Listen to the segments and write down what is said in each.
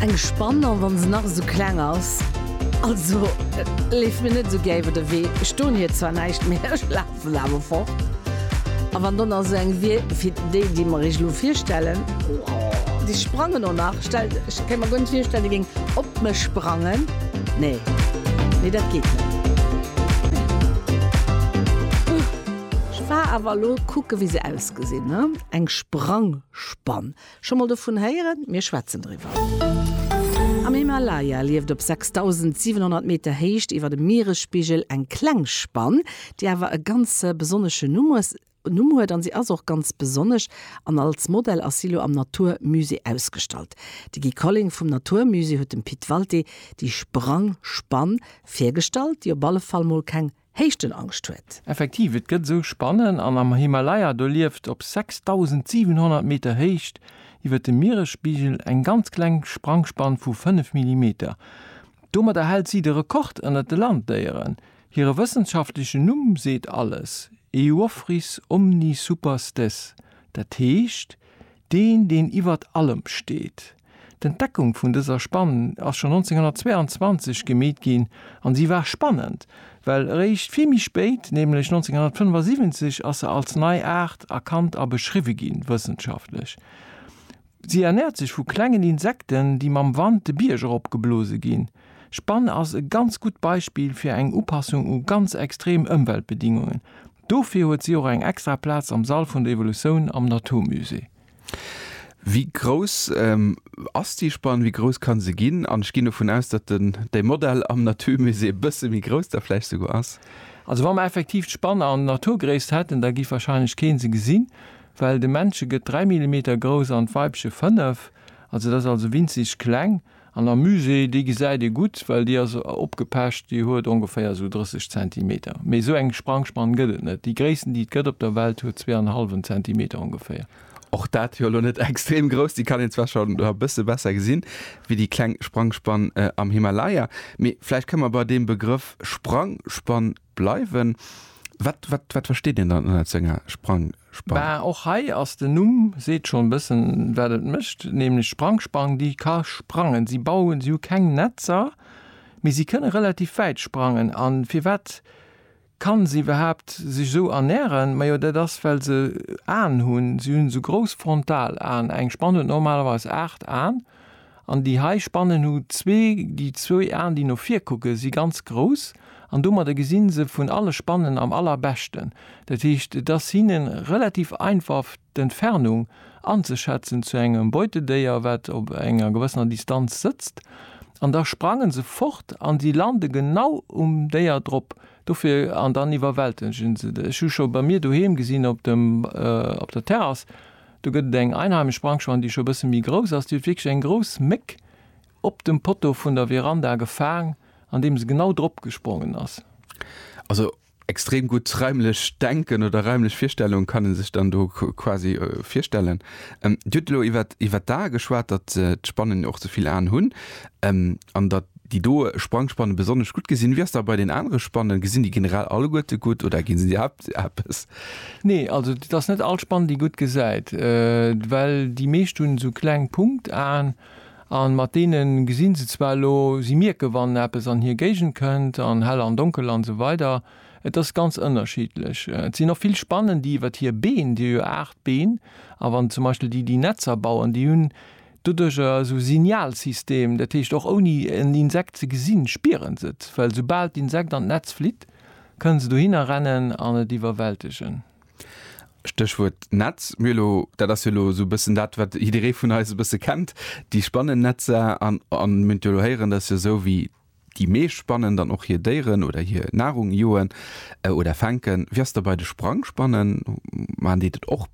Eng Spann an wann se nach esou kleng ass. Also leef mir net esou gär iwwer de Wee. Ech doen hir zwar näischt, mee ech lafen awer fort. A wann do nach esou eng wier wéi déi, déi mer iech elo virstellen, déi sprangen och nach. Stellt, ech kéint mer guer net virstellen, déi géing op mech sprangen. Nee, nee dat geet net. Ech war awer elo kucken, wéi se ausgesinn, ne? Eng Sprangspann. Scho mol dovun héieren? Mir schwätzen driwwer. Am Himalaya lieft op 6.700 Meter Héicht iwwer dem Mieresspigel eng kleng Spann, déi awer e ganz besonneschen Numm huet an si ass och ganz besonnesch an als Modell ass si elo am Natur Musée ausgestallt. De Guy Colling vum Natur Musée huet dem Pit Walté déi Sprangspann virgestallt, déi op alle Fall mol keng Héichten Angscht huet. Effektiv, et gëtt esou Spannen an am Himalaya do lieft op 6.700 Meter Héicht iwwer dem Mieresspigel eng ganz kleng Sprangspann vu 5 Millimeter. Domadder hält si de Rekord ënnert de Landdéieren. Hire wëssenschaftlechen Numm seet alles, Euophrys omnisuperstes, dat heescht, deen, deen iwwert allem steet. D'Entdeckung vun dëser Spann ass schonn 1922 gemeet ginn an si war spannend, well eréischt vill méi spéit, nämlech 1975, ass se als nei Aart erkannt a beschriwwe ginn, wëssenschaftlech. Si ernäert sech vu klengen Insekten, déi mam Wand de Bierg erop geblose ginn. D'Spann ass e ganz gutt Beispill fir eng Upassung u ganz extrem Ëmweltbedingungen. Dofir huet si och eng extra Plaz am Sall vun der Evolution am Naturmusée. Wéi grouss ass déi Spann, wéi grouss ka se ginn? An ech ginn dovun aus, datt den däi Modell am Naturmusée e bësse méi grouss da vläicht souguer ass. Also wa mer effektiv d'Spann an Naturgréisst hätten, da géif warscheinlech kee se gesinn, well de Männche gëtt dräi Millimeter grouss an d'Weibche fënnef. Also dat ass also winzeg kleng. An der Muse, déi gesäit ee gutt, well déi ass opgepecht, déi huet ongeféier esou 30 Zentimeter. Mee esou eng Sprangspann gëtt et net. Déi gréissten, déi et gëtt op der Welt, huet zwee an e hallwen Zentimeter ongeféier. Och dat jo elo net extrem grouss, déi kann een zwar scho e bësse besser gesinn wéi déi kleng Sprangspann am Himalaya. Mee vläicht kënne mer bei deem Begrëff Sprangspann bleiwen. Wat, wat, wat versteet een dann ënnert senger Sprangspann? Bah, och hei ass den Numm, seet schonn e bëssen, wat et mécht, nämlech d'Sprangspann, déi ka sprangen. Si bauen, si hu keng Netzer, mee si kënne relativ wäit sprangen. A firwat kann se iwwerhaapt sech esou ernären? Majo, dat ass, well se Aen hunn. Si hunn esou grouss Frontalaen. Eng Spann huet normalerweis aacht Aen. An déi hei Spannen hu zwee, déi zwou Aen déi no vir kucken, si ganz grouss an domadder gesi se vun alle Spannen am allerbeschten. Dat heescht et ass hinne relativ einfaf d'Entfernung anzeschätzen zu engem Beutedéier wat op enger gewëssener Distanz sëtzt an da sprangen se fort an si lande genau um Déier drop dofir an dann iwwerwältegen se et. Ech hu scho bei mir doheem gesinn op dem op der Terrass Do gëtt et eng einheimisch Brankschwein, déi scho bësse méi grouss ass. Déi huet wierklech eng grouss Méck op dem Poteau vun der Veranda gefaang, an deem se genau drop gesprongen ass. Also extrem gutt raimlech Denken oder raimlech Virstellung kann e sech dann do quasi virstellen. Dir hutt elo iwwert d'Ae geschwat, datt d'Spannen och ze vill Aen hunn an datt, Déi do Sprangspannen besonnesch gutt gesinn. Wéi ass dat bei den anere Spannen? Gesinn déi generell alleguerte gutt oder ginn se iwwerhaapt eppes? Nee, also et ass net all Spann déi gutt gesäit, well déi meescht hunn esou kleng Punktaen a mat deene gesinn se zwar elo, si mierke wann eppes an hir Géigend kënnt an hell an donkel an esou weider. Et ass ganz ënnerschiddlech. Et sinn och vill Spannen déi iwwert hir Been, déi hu jo 8 Been, a wann zum Beispill déi déi Netzer bauen, déi hunn Doduerch ass e Signalsystem, dat heescht och ouni en Insekt ze gesinn, spieren se et, well soubal d'Insekt an d'Netz flitt, kënne se dohinner rennen an et iwwerwältegen. Stéchwuert Netz, mir elo, dat ass jo elo esou e bëssen dat, wat jidderee vun eis e bësse kennt, déi Spannennetzer an mir hunn et jo elo héieren, dat ass jo esou wéi, Déi meescht spannen dann och hir Déieren oder hir Nahrung, joen oder fänken. Wéi ass da bei de Sprangspannen? Maachen déi dat och?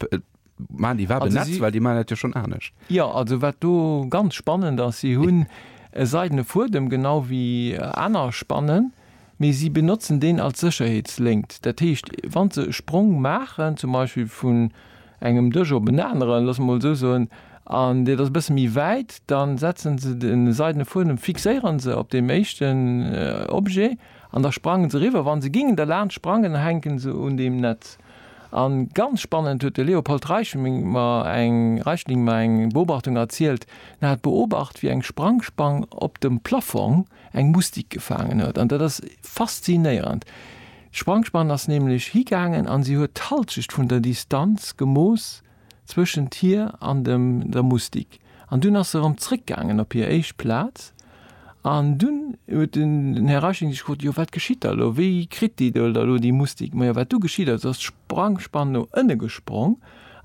Maachen déi iwwerhaapt en Netz? Well déi maachen dat jo schonn anescht. Jo, also wat do ganz spannend ass, si hunn e seidene Fuedem, genau wéi aner Spannen, mee si benotzen deen als Sécherheetslënkt. Dat heescht, wa se e Sprong maachen, zum Beispill vun engem Dësch op en aneren, loosse mer mol esou soen, an deet ass e bësse méi wäit, da setze se de seidene Fuedem, fixéiere se op deem éischten Objet an da sprange se eriwwer. Wa se gingen derlaanscht sprangen, da hänke se un deem Netz. A ganz spannend huet de Leopold Reichling mer eng Reichling mer eng Beobachtung erzielt, en hat beobacht, wéi eng Sprangspang op dem Plaffong, eng Mustik gefaangen huet. An dat ass faszinéierend. D'Sprangspann ass nämlech higaangen an si huet d'Halschecht vun der Distanz gemooss zwëschent hir an dem der Mustik. An dunn ass se erëm zréckgaangen op hir éischt Plaz. An dunn huet den Här Reichling sech gefrot, Jo wat geschitt da elo? Wéi kritt déi do da elo déi Mustik? Majo wat du geschitt ass, ass d'Sprangspann no ënne gesprong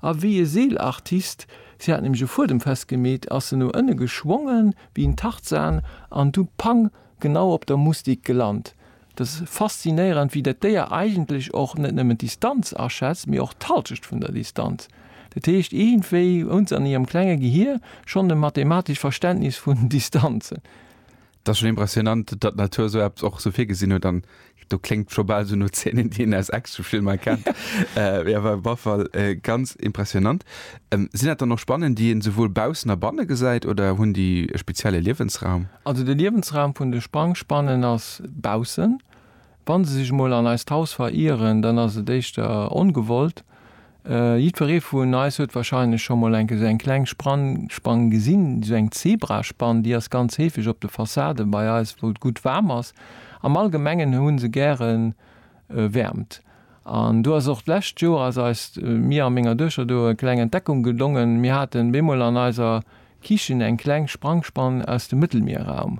a wéi e Seelartist, si hat nämlech e Fuedem festgemeet, ass se no ënne geschwongen, Wéi en Tarzan an du pang genau op der Mustik gelant. Et ass faszinéierend, wéi dat Déier eigentlech och net nëmmen d'Distanz aschätzt, mee och d'Halschecht vun der Distanz. Dat heescht, iergendwéi hunn s'an hirem klenge Gehier schonn e mathematescht Verständnis vun Distanzen. Et ass schonn impressionant, datt d'Natur esou eppes och esou virgesinn huet an do klingt schon bal so no Szenen, déi een aus Actionfilmer kennt. äh, ja, war auf Fall äh, ganz impressionant. Ähm, sinn dat dann noch Spannen, déi een sowohl baussen a banne gesäit oder hunn déi e spezielle Liewensraum? Also de Liewensraum vun de Sprangspannen ass baussen. Wann se sech mol an eist Haus verieren, dann ass et éischter ongewollt. Jiddweree vun eis huet warscheinlech scho mol enke sou eng kleng Spann gesinn, sou eng Zebraspann. Déi ass ganz heefeg op de Fassaden bei eis, wou et gutt waarm ass. Am Allgemengen hu se gäre Wäermt. An do ass och d'lescht Joer ass eis, mir a menger Duechter do, e kleng Entdeckung gelongen, Mir haten bemol an eiser Kichen eng kleng Sprangspann aus dem Mëttelmierraum.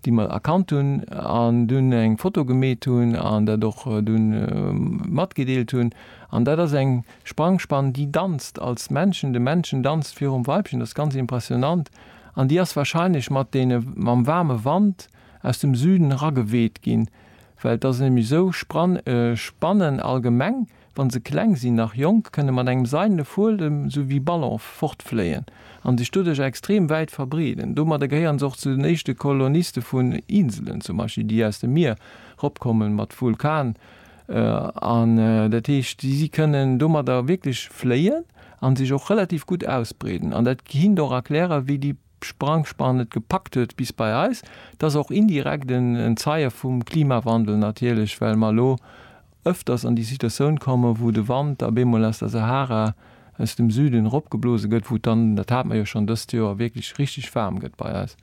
déi mer erkannt hunn an dunn eng Foto gemeet hunn an dat och dunn matgedeelt hunn. An dat ass eng Sprangspann, déi danzt als Männchen, de Männchen danzt virum Weibchen, dat ass ganz impressionant, an déi ass wahrscheinlech mat deene, mam waarme Wand aus dem Süden erageweet ginn, well et ass nämlech esou, Spann, Spannen allgemeng Wann se kleng sinn, nach jonk, kënne mat engem seidene Fuedem, sou wéi Ballon, fortfléien an sech doduerch extrem wäit verbreeden. Domadder gehéieren se och zu den éischte Koloniste vun Inselen, zum Beispill, déi aus dem Mier ropkomme mat Vulkan an dat heescht, si kënnen domadder wierklech fléien an sech och relativ gutt ausbreeden an dat hinnen och erklären, wéi déi Sprangspan et gepackt huet bis bei eis. Et ass och indirekt en Zeie vum Klimawandel natierlech, well mer elo ëfters an déi Situatioun komme wou de Wand da beemol aus der Sahara aus dem Süden eropgeblose gëtt, wou et dann, dat hate mer jo schonn dëst Joer, wierklech richteg waarm gëtt bei eis.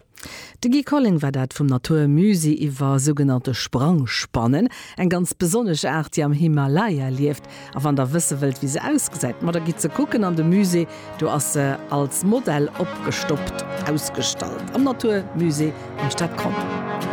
De Guy Colling war dat vum Natur Musée iwwer sougenannte Sprangspannen, eng ganz besonnesch Aart, déi am Himalaya lieft. A wann der wësse wëllt, wéi se ausgesäit, ma da gitt se kucken an de Musée, do ass se als Modell opgestoppt ausgestallt am Natur Musée am Stadgronn.